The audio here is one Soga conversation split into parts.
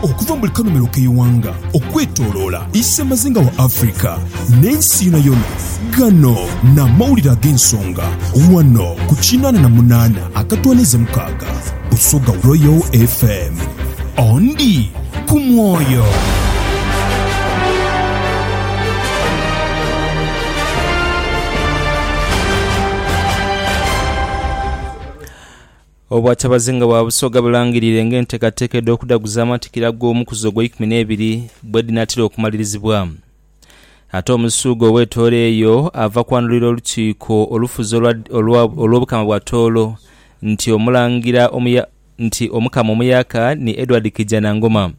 Okuva mu buli kanhumilo k'eighanga okwetoloola isemazinga wa Africa n'ensi yonayona, ghano n'amawulire ag'ensonga ghano ku kinaana na munaana akatwaniiza mukaaga Busoga Royal FM. Ondi ku mwoyo. Obwa Kyabazinga bwa Busoga bulangirire ng'enteekateeka edh'okudaguza amatikkira ag'omukuzi ogw'eikumi n'ebiri bwedhinaatera okumalirizibwa. Ate Omusuuga ow'etooro eyo ava kwanulira Olukiiko olufuzi olwa olwa olw'Obukama bwa Tooro nti Omulangira omuya nti Omukama omuyaka ni Edward Kijanangoma.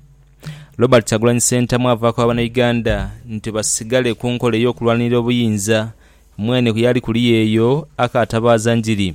Robert Kyagulanyi Ssentamu ava kwa Banauganda nti basigale ku nkola ey'okulwanirira obuyinza, mwene ku yaali kuliya eyo akaatabaaza njiri.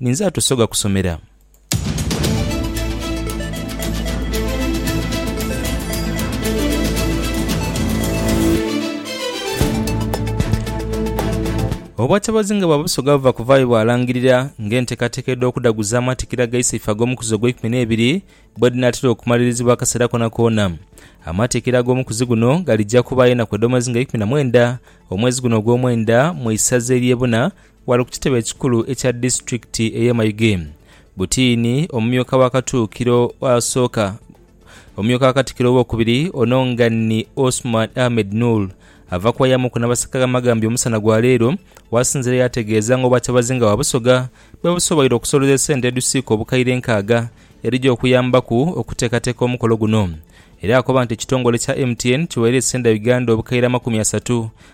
Ninze atusoga kusomera. Obwatabazi nga bwa busoga buva kuvaayo bwalangirira ng'enteekateeka edh'okudhaguzaamu atikira agaisa ife ag'omukuzi ogw'eikumi n'ebiri bwedhinaatera okumalirizibwa akaseera konakoona. Amatiikira ag'omukuzi guno galija kubaayo enaku edh'omwezi nga ikumi na mwenda omwezi guno ogw'omwenda mu isaza ery'e Buna Ghale ku kitebe ekikulu ekya disiturikiti ey'e Mayuge, Butiini, omumyuka wa Katuukiro asooka, omumyuka wa Katikiro ow'okubiri ono nga ni Osman Ahmed Noor ava ku bayamuku n'abasika amagambi omusana gwa leero wasinzire yaategeeza nga Obwakyabazinga bwa Busoga bwebusoboire okusolooza esente edhusiika obukaire nkaaga edhija okuyambaku okuteekateeka omukolo guno era akoba nti ekitongole kya MTN kiweire Senda Uganda obukaire amakumi asatu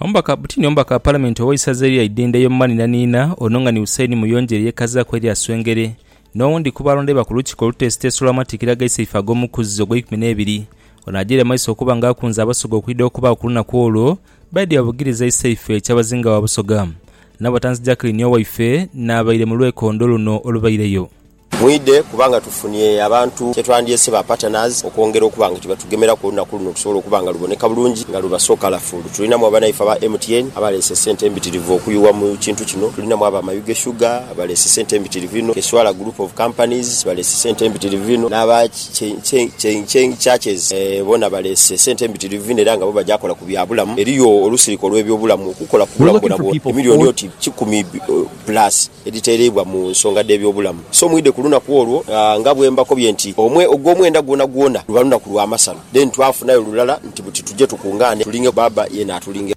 Omubaka Butini Omubaka wa Palamenti ow'eisaza erya Idhindha ey'omu manhinanhinha ono nga ni Hussein Muyonjere yekazaaku erya Swengere n'owundi ku balonderwa ku lukiiko oluteesiteesi olw'amatikkira ag'eisaife ag'omukuzzi ogw'eikumi n'ebiri. Ono agyeire maiso okuba nga akunze Abasoga okwidha okubaagho ku lunaku olwo baidhie babugirize eisaife Kyabazinga wa Busoga Nabatanzi Jacqueline Owaife n'abaire mu lwekondo luno olubaireyo. Mwidhe kubanga tufunye abantu kye twandhyese ba partners okwongera okuba nga kyebatughemerako olunaku luno lusobole okuba nga luboneka bulungi nga luba so colourful. Tulinamu abanaife aba MTN abaleese sente embitirivu okuyugha mu kintu kino, tulinamu aba Mayuge Sugar baleese sente embitirivu inho, Keswala Group of Companies baleese sente embitirivu inho n'aba Cheng Churches boona baleese sente embitirivu inho era nga bo bagya kola ku bya bulamu. Eriyo olusirika olw'ebyobulamu okukola ku bulamu bwonabwona emilioni oti kikumi. Plus edhitereibwa mu nsonga dh'ebyobulamu. So mwidhe ku lunaku olwo, nga bwe mbakobye nti, omwe, ogw'omwenda gwonagwona luba lunaku lwa masano. Then twafunayo lulala nti buti tuje tukungaane tulinge Bbaabba yena atulinge.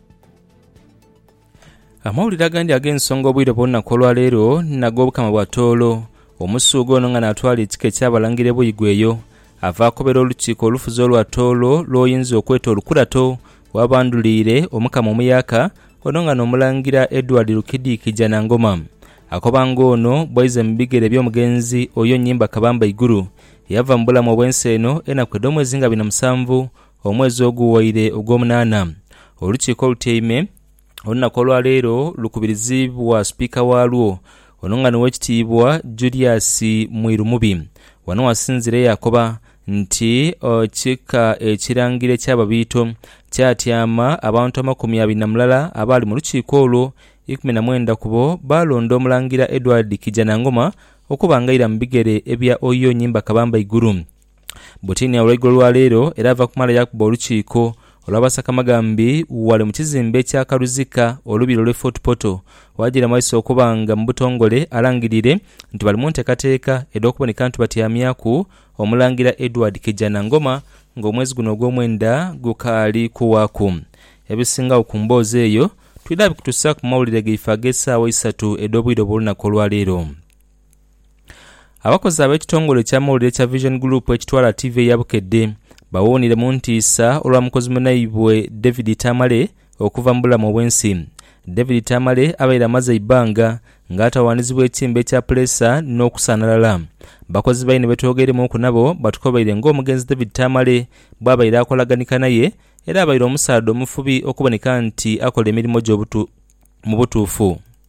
Amawulire agandi ag'ensonga obwire bw'olunaku olwa leero n'ag'Obukama bwa Tooro. Omusuuga ono nga n'atwala ekika eky'Abalangira e Buigwe eyo, ava akobera olukiiko olufuzi olwa Tooro lw'oyinza okweta olukurato Ghabandhulire Omukama omuyaaka, ono nga n'omulangira Edward Rukidi Kijanangoma. Akoba nga ono bwaize mu bigere by'omugenzi Oyo Nyimba Kabamba Iguru, yava mu bulamu obw'ensi eno enaku edh'omwezi nga bina musanvu omwezi oguwaire ogw'omunaana. Olukiiko olutyaime. olunaku olwaleero lukubirizibwa sipiika waalwo ono nga niwekitiibwa Julius Mwiru Mubi wano wasinzire yakoba nti ekika ekirangire eky'Ababiito kyatyama abantu amakumi abiri na mulala abaali mu lukiiko olwo ikumi na mwenda kubo baalonda Omulangira Edward Kijanangoma okuba nga aira mu bigere ebya Oyo Nyimba Kabamba Iguru Butinia olweigulo lwa leero era ava kumala yakuba olukiiko olwa basakamagambi ghale mu kizimbe ekya Karuzika olubiri olw'e Fort Portal waajira maiso okuba nga mu butongole alangirire nti bali mu ntekateeka edh'okuboneka nti batyamyaku Omulangira Edward Kijanangoma nga omwezi guno ogw'omwenda gukaali kuwaaku. Ebisingagho ku mboozi eyo twidha bikutusaku mu mawulire gaife ag'esaawa eisatu edh'obwire obw'olunaku olwa leero. Abakozi ab'ekitongole eky'amawulire ekya Vision Group ekitwala tiivi eya Bukedde bawuunire mu ntiisa olwa mukozi munaibwe David Tamale okuva mu bulamu obw'ensi. David Tamale abaire amaze eibbanga nga atawaanizibwa ekiimba ekya puleesa n'okusaanalala. Bakozi baine betwogeiremuuku nabo batukobaire ng'omugenzi David Tamale bwabaire akolaganika naye era abaire omusaadha omufubi okuboneka nti akola emirimo gye mu butuufu.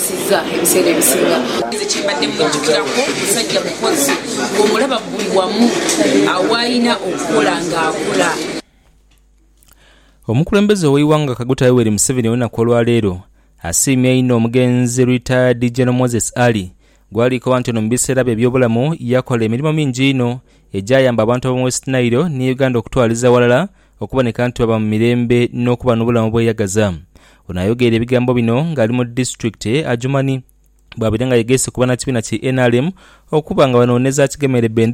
Nsiza ebiseera ebisinga. Nze kye mbadde mwijukirako musajja mukozi ng'omulaba buli wamu agho w'alina okukola ng'akola. Omukulembeze ow'eighanga Kaguta Yoweri Museveni olunaku olwaleero asiimye inho omugenzi Retired General Moses Ali gwalikoba nti ono mu biseera bye eby'obulamu yakola emirimo mingi inho egyayamba abantu ab'omu West Nile ni Uganda okutwaliza ghalala okuboneka nti baba mu mirembe n'okuba n'obulamu obweyagaza. Ono ayogeire ebigambo bino nga ali mu disitulikiti eye Adjumani bwabaire nga yegeese ku banakibiina ki nrm okuba nga banooneza akigemeire bendera